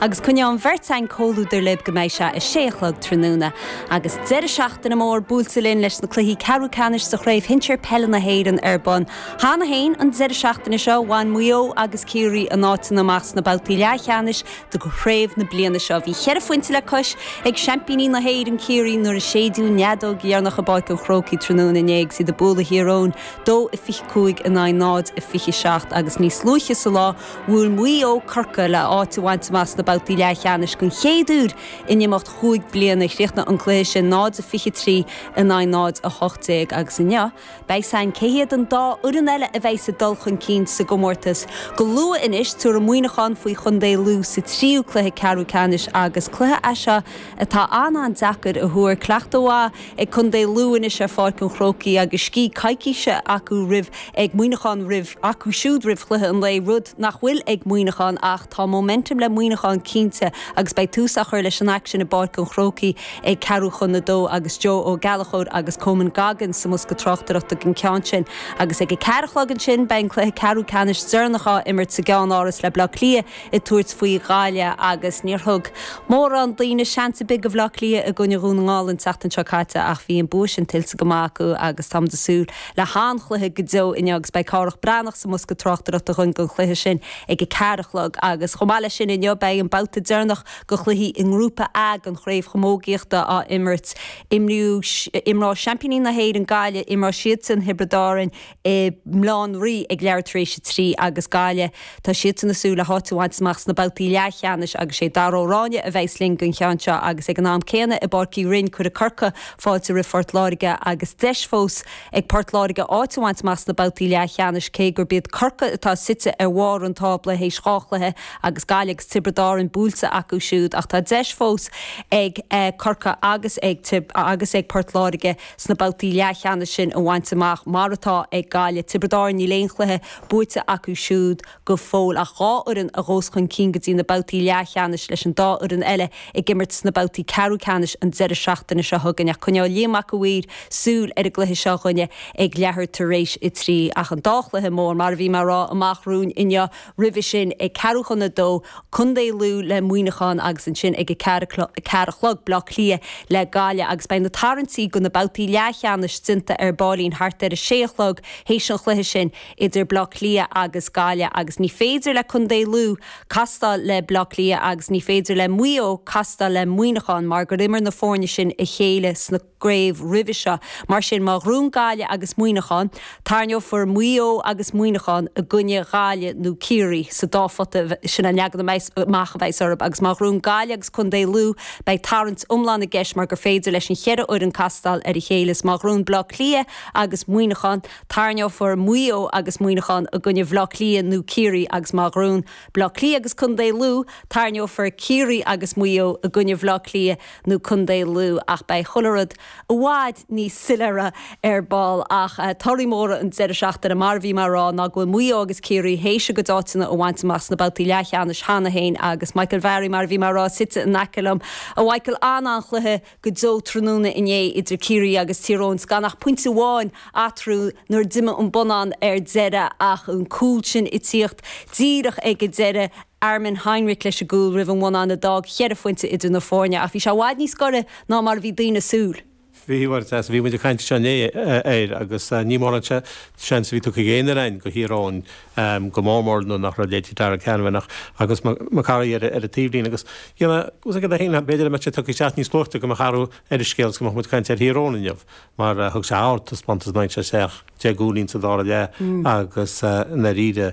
Agus coinneoidh an bheirt againn comhluadar libh go mbeidh sé a sé a chlog tráthnóna. Agus deireadh seachtaine mór buailte linn leis na cluichí ceathrú ceannais sa Chraobh Shinsir Peile na hÉireann ar bun cheana féin an deireadh seachtaine seo, bhain Maigh Eo agus Ciarraí a n-áiteanna amach sna babhtaí leathcheannais de chraobh na bliana seo. Bhí cheithre phointe le cois ag seaimpíní na hÉireann, Ciarraí, nuair a séideadh an fheadóg dheireanach i bPáirc an Chrócaigh tráthnóna inné agus iad ag bualadh Thír Eoghain, 2-25 in aghaidh 0-27, agus níos luaithe sa lá, Bhuail Maigh Eo Corcaigh le áit a bhaint amach sna babhtaí leathcheannais den chéad uair in imeacht chúig bliana. Chríochnaigh an cluiche sin 0-23 in aghaidh 0-18 agus inniu, beidh fhios againn cé hiad an dá fhoireann eile a bheidhs ag dul chun cinn sa gcomórtas. Go luath anois, tabharfaidh Muineachán faoi chontae Lú sa tríú cluiche ceathrú ceannais agus cluiche é seo atá an-an-deacair a thuar. Cleachtadh mhaith. ag contae Lú anois ar Pháirc an Chrócaigh agus scíth coicíse acu roimh ag Muineachán roimh acu siúd roimh chluiche an lae, rud nach bhfuil ag Muineachán ach tá momentum le Muineachán cinnte agus beidh tús á chur leis an aicsean i bPáirc an Chrócaigh ag ceathrú chun a dó agus Joe Ó Gallachóir agus Coman Goggins sa mbosca tráchtaireachta don cheann sin agus ag a ceathair a chlog ansin beidh an cluiche ceathrú ceannais deireanach á imirt sa gceann-áras le Bleá Cliath ag tabhairt faoi Ghaille agus níor thug mórán daoine seans ar bith go Bhleá Cliath i gcoinne Dhún na nGall an tseachtain seo caite ach bhí an bua sin tuillte go maith acu agus táimid ag súil le han-chluiche go deo inniu agus beidh Cárthach Bán Breathnach sa mbosca tráchtaireachta againn don chluiche sin ag a ceathair a chlog agus chomh maith leis sin inniu beidh an babhta deireanach de chluichí i ngrúpa A den chraobh chamógaíochta á imirt. Imreoidh seaimpíní na hÉireann Gaille, imreoidh siadsan Tiobraid Árann, i mBaile Átha an Rí ag leathuair tar éis a trí agus Gaille, tá siadsan ag súil le háit a bhaint amach sna babhtaí leathcheannais agus sé Darragh Ó Ráinne a bheidhs linn don cheann seo agus ag an am céanna i bPáirc Uí Rinn cuirfidh Corca fáilte roimh Phort Láirge agus deis fós ag Port Láirge áit a bhaint amach sna babhtaí leathcheannais cé gurb iad Corca atá suite ar bharr an tábla théis dhá chluiche agus Gaille agus Tiobraid Árann buailte acu siúd ach tá deis fós ag Corca agus ag agus ag Port Láirge sna babhtaí leathcheannais sin a bhaint amach, mar atá ag Gaillimh. Tiobraid Árann, níl aon chluiche buaite acu siúd go fóill ach dhá fhoireann a ghabhas chun cinn go dtí na babhtaí leathcheannais, leis an dá fhoireann eile ag imirt sna babhtaí ceathrú ceannais an deireadh seachtaine seo chugainn. Ach coinneoidh Liam Mac a' Mhaoir súil ar an gcluiche seo dhúinne ag leathuair tar éis a trí ach an dá chluiche mór, mar a bhí mé ag rá amach romhainn inniu, roimhe sin ag ceathrú chun a dó, contae Lú le Muineachán agus ansin ag a ceathair a chlog, Bleá Cliath le Gaillimh agus beidh na tarraingtí do na babhtaí leathcheannais déanta ar baillín thart ar a sé a chlog théis an chluiche sin idir Bleá Cliath agus Gaillimh agus ní féidir le contae Lú castáil le Bleá Cliath agus ní féidir le Maigh Eo castáil le Muineachán mar gur imir na foirne sin a chéile sna gcraobh roimhe seo. Mar sin, má ghnóthaíonn Gaillimh agus Muineachán, tairneofar Maigh Eo agus Muineachán i gcoinne Ghaillimh nó Ciarraí sa dá phota sin an leagan amach a bheas orthub agus má ghnóthaíonn Gaillimh agus Contae Lú beidh tarraingt iomlán i gceist mar gur féidir leis an cheithre fhoireann castáil ar a chéile is má ghnóthaíonn Bleá Cliath agus Muineachán, tairneofar Maigh Eo agus Muineachán i gcoinne Bhleá Cliath nó Ciarraí agus má ghnóthaíonn Bleá Cliath agus Contae Lú, tairneofar Ciarraí agus Maigh Eo i gcoinne Bhleá Cliath nó Contae Lú ach beidh chuile rud i bhfad níos soiléire ar ball ach torthaí móra an deireadh seachtaine mar a bhí mé ag rá ná go bhfuil Maigh Eo agus Ciarraí théis a gcuid áiteanna a bhaint amach sna babhtaí leathcheannais cheana féin agus Michael Varry mar a bhí mé ag rá suite in aice liom. A Mhichael, an-an-chluiche go deo tráthnóna inné idir Ciarraí agus Tír Eoghain 's gan ach pointe amháin eatarthu nuair a d'imigh an bonnán ar deireadh ach an cúl sin ag tíocht díreach ag an deireadh Armin Heinrich leis an gcúl roimh an mbonnán a d'fhág cheithre phointe idir na foirne ach bhí sé i bhfad níos gaire ná mar a bhí daoine ag súil. Bhí uair as a bhí muid ag caint anseo inné air agus ní mórán seans a bhí tugtha ag aon fhear againn do Thír Eoghain, go mór mór nuair nach raibh leithéidí Darragh Canavan agus McCurry ar an taobhlíne agus b'fhéidir dá mbeadh sé tugtha isteach níos luaite go mbeadh athrú ar an scéal agus go mbeadh muid ag caint ar Thír Eoghain inniu mar thug sé ardtaispeántas ag aimsiú a seacht, deich gcúilín sa dara leath agus i ndáiríre.